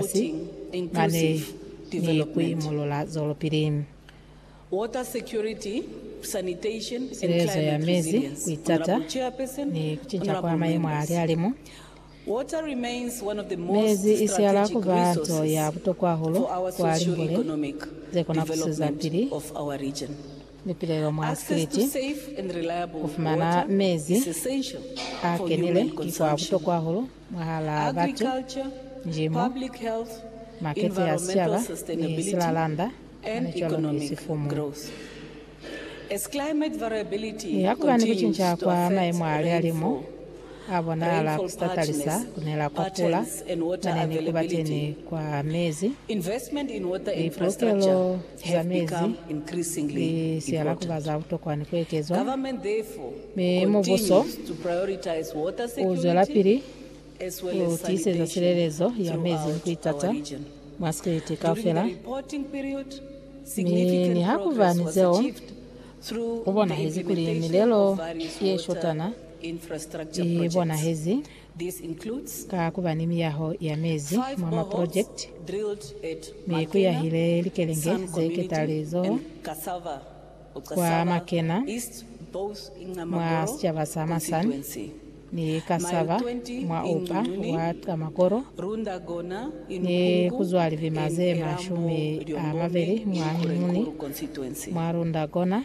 Polisi, mane ni kuimulula zwelopili. Sirezo ya mezi, kuitata ni kucinca kwa mayemo a lihalimu. Mezi isihala kuba nto ya butokwa hahulu kwa limbule zekona kuswezapili lipilelo mwa sikiliti. Kufumana mezi akenile ki kwa butokwa hahulu. mwahalaa batu, njimo, makete a sicaba, ni silalanda halicwalo ni sifumu. Mi hakuba ni kucinca kwa maemo a lihalimu a bonahala ku sa talisa ku nela kwa pula mane ni ku ba teni kwa mezi, lipolokelo, za mezi ni sialakuba za butokwa ni ku ekezwa, mi mubuso u zwelapili ku tiiseza silelezo ya mezi ni ku itaza mwa sikriti kaufela. Mi nihakuba ni zeo, ku bonahezi kuli milelo ye shotana i bonahezi. ka ku ba ni miyaho ya mezi mwa maprojekiti, mi ku yahile likelenge ze ketalizoho kwa Makena mwa sicaba sa Masan ni Cassava mwa upa wa Qamaqoro, ni ku zwa libima ze mashumi a mabeli mwa Nguni mwa Rundagona.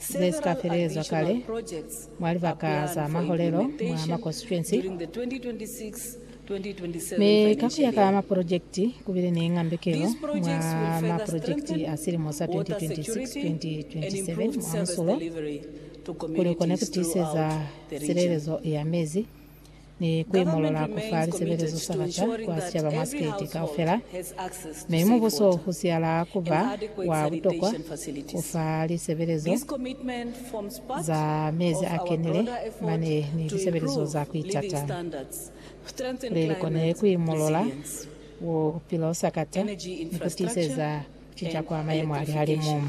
ze si ka felezwa kale mwa libaka za maholelo mwa makonsituensi, mi ka ku ya ka maprojekiti ku bile ni ngambekelo mwa maprojekiti a silimo sa 2026-2027 mwa musulo kuli u kone ku tiiseza silelezo ya mezi. ni kuimolola kufa lisebelezo sa baca kwa sicaba mwa sikete kaufela, mi mubuso usiala kuba wa butokwa kufa lisebelezo za mezi akenile mane ni lisebelezo za kuitata kuli likone kuimolola bupilo sakata ni kutiiseza kucinca kwa mayemo alihalimu.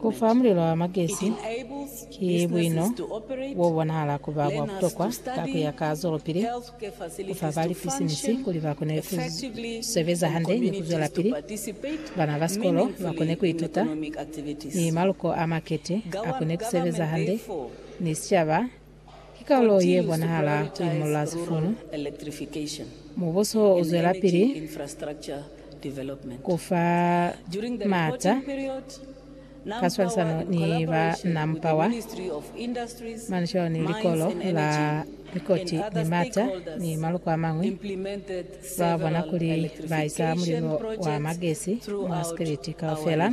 Ku fa mulilo wa magesi ki buino bo bonahala ku ba bwa butokwa ka ku ya ka zwelopili ku fa ba lipisinisi kuli ba kone ku sebeza hande ni ku zwelapili, bana ba sikolo ba kone ku ituta, ni maluko a makete a kone ku sebeza hande, ni sicaba Ki karolo ye bonahala ku imolla sifunu. Mubuso u zwelapili ku fa maata ka swalisano ni ba NamPower, Manusholo ni Likolo la Likoti ni Maata ni maluko a mañwi, lwa bona kuli ba isa mulilo wa magesi mwa sikiliti kaufela.